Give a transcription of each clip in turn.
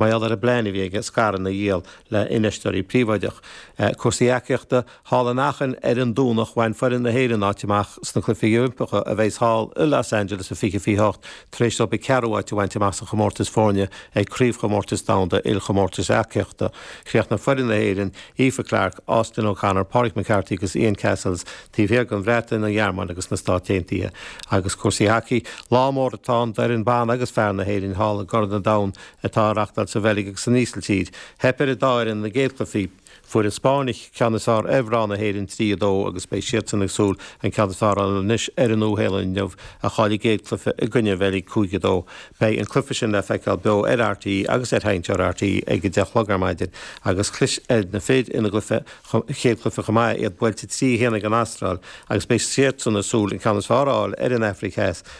mar gheall ar an bplean a bhí aige scaireanna a dhíol le infheisteoirí príobháideacha. Cúrsaí eachaíochta, Thall in Aachen ar an Domhnach bhain foireann na hÉireann áit amach sna Cluichí Oilimpeacha a bheidh thall i Los Angeles i 2028 tar éis dóibh an ceathrú áit a bhaint amach sa chomórtas foirne ag Craobhchomórtas Domhanda Ilchomórtais Eachaíochta. Chríochnaigh foireann na hÉireann, Aoife Clark, Austin O'Connor, Pádraig McCarthy agus Ian Cassells, taobh thiar den Bhreatain, an Ghearmáin agus na Stáit Aontaithe. Agus cúrsaí hacaí, Lá mór atá ann d'fhoireann ban agus fear na hÉireann thall i gCorn an Domhain, atá á reachtáil sa Bheilg agus san Ísiltír. Theip ar an dá fhoireann ina gcéad chluifí. Fuair an Spáinn an ceann is fearr ar mhná na hÉireann trí a dó agus beidh siadsan ag súil an ceann is fearr a fháil anois ar an Nua-Shéalainn inniu a chaill a gcéad chluife i gcoinne an Bheilg cúig a dó. Beidh an cluiche sin le feiceáil beo ar RTÉ agus ar sheinnteoir RTÉ ag a deich a chlog ar maidin agus chlis ar na fir ina gcéad chluife chomh maith, iad buailte trí a haon ag an Astráil agus beidh siadsan ag súil an ceann is fearr a fháil ar an Afraic Theas.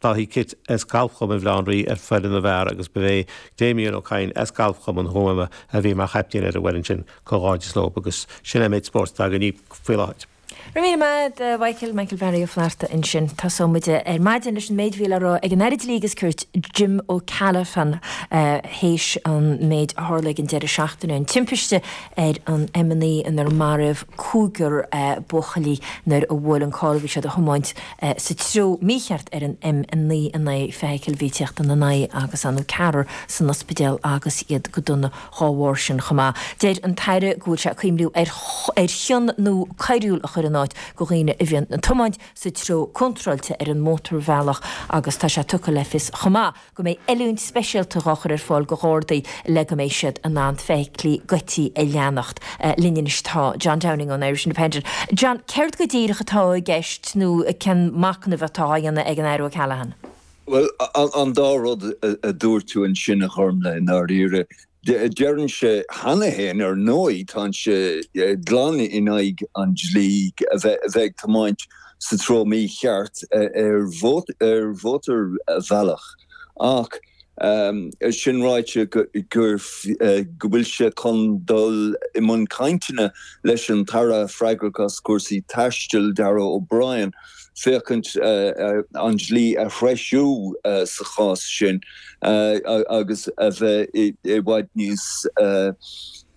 David Kitt as Galfchumann Bhaile Átha an Rí ar fhoireann na bhfear agus ba é Damien Ó Cadhain as Galfchumann Thuama a bhí mar chaiptín ar an bhfoireann sin. Comhghairdeas leo agus sin é an méid spóirt atá againn faoi láthair. Go raibh míle maith agat, a Mhichael, Michael Barry Ó Flatharta ansin. Tosóidh muid ar maidin leis an méid a bhí le rá ag an Aire Dlí agus Cirt, Jim O'Callaghan, théis an méid a tharla ag an deireadh seachtaine, an timpiste ar an M9 inar maraíodh cúigear buachaillí nuair a bhuail an carr a bhí siad a thiomáint, sa treo mícheart ar an M9 in aghaidh feithicil a bhí ag teacht ina n-aghaidh agus an ceathrar san ospidéal agus iad go dona dhá bharr sin chomh maith. Deir an tAire go bhfuil sé ag cuimhniú ar ar chion nua coiriúil a chur in áit go dhaoine a bhíonn ag tiomáint sa treo contráilte ar an mótarbhealach agus tá sé tugtha le fios chomh maith go mbeidh oiliúint speisialta dhá chur ar fáil go Ghardaí le go mbeidh siad in ann feithiclí goidte a leanacht. Linn anois tá John Downing ón Irish Independent. John, céard go díreach atá i gceist nó cén machnamh atá á dhéanamh ag an Aire O'Callaghan? Bhuel, an dá rud a dúirt tú ansin a Ghormfhlaith, i ndáiríre, Deireann sé cheana féin, ar ndóigh, tá sé glan in aghaidh an dlí a bheith ag tiomáint sa treo mícheart ar mhótarbhealach, ach é sin ráite, go bhfuil sé chun dul i mbun cainteanna leis an t-Aire freagrach as cúrsaí taistil, Darragh O'Brien. féachaint ar an dlí a threisiú sa chás sin agus a bheith i bhfad níos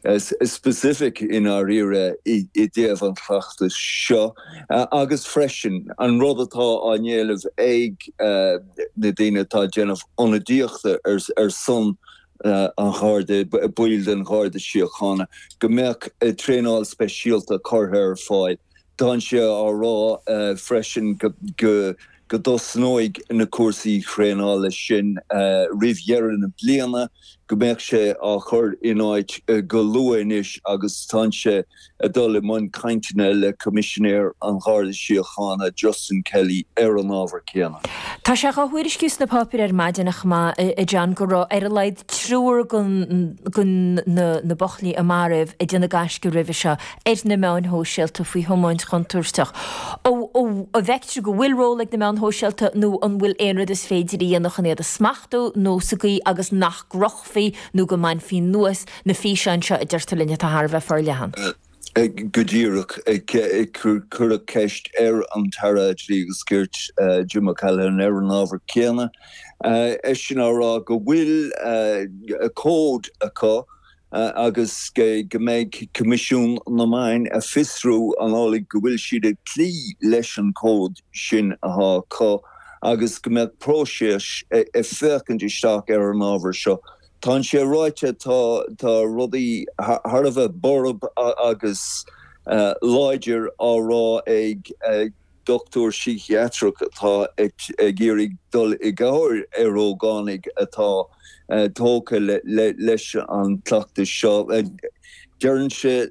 specific i ndáiríre i dtaobh an chleachtais seo agus freisin an rud atá á n-éileamh ag na daoine atá ag déanamh ionadaíochta ar son an Gharda, baill den Gharda Síochána, go mbeadh traenáil speisialta curtha ar fáil Tá sé á rá freisin go dtosnóidh na cúrsaí traenála sin roimh dheireadh na bliana, go mbeidh sé á chur in áit go luath anois agus tá sé ag dul i mbun cainteanna le Coimisinéir an Gharda Síochána, Justin Kelly, ar an ábhar céanna. Tá sé dhá thuairisciú sna páipéir ar maidin, ach go háirithe, a John, go raibh ar a laghad triúr de na buachaillí a maraíodh ag déanamh gaisce roimhe seo ar na meáin shóisialta faoi thiomáint chontúirteach. An bhfeictear go bhfuil ról ag na meáin shóisialta nó an bhfuil aon rud is féidir a dhéanamh chun iad a smachtú nó sa gcaoi agus nach gcrochfaí nó go mbainfí anuas na físeáin seo a deirtear linn atá thar a bheith forleathan? Go díreach. Cuireadh ceist ar an Aire Dlí agus Cirt, Jim O'Callaghan, ar an ábhar céanna, eisean á rá go bhfuil cód acu agus go mbeidh Coimisiún na Meán ag fiosrú an amhlaidh go bhfuil siad ag cloí leis an cód sin atá acu agus go mbeidh próiseas ag féachaint isteach ar an ábhar seo. Tá an sé ráite, tá rudaí thar a bheith borb agus láidir á rá ag. Dochtúir síciatrach atá ag iarraidh dul i gcabhair ar ógánaigh atá tógtha leis an gcleachtas seo. Deireann sé,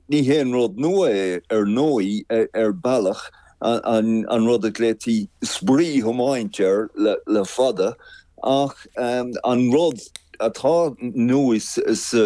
Ní haon rud nua é, ar ndóigh, ar bhealach, an rud a nglaoití 'spraoi-thiomáint' air le fada, ach an rud atá nua sa.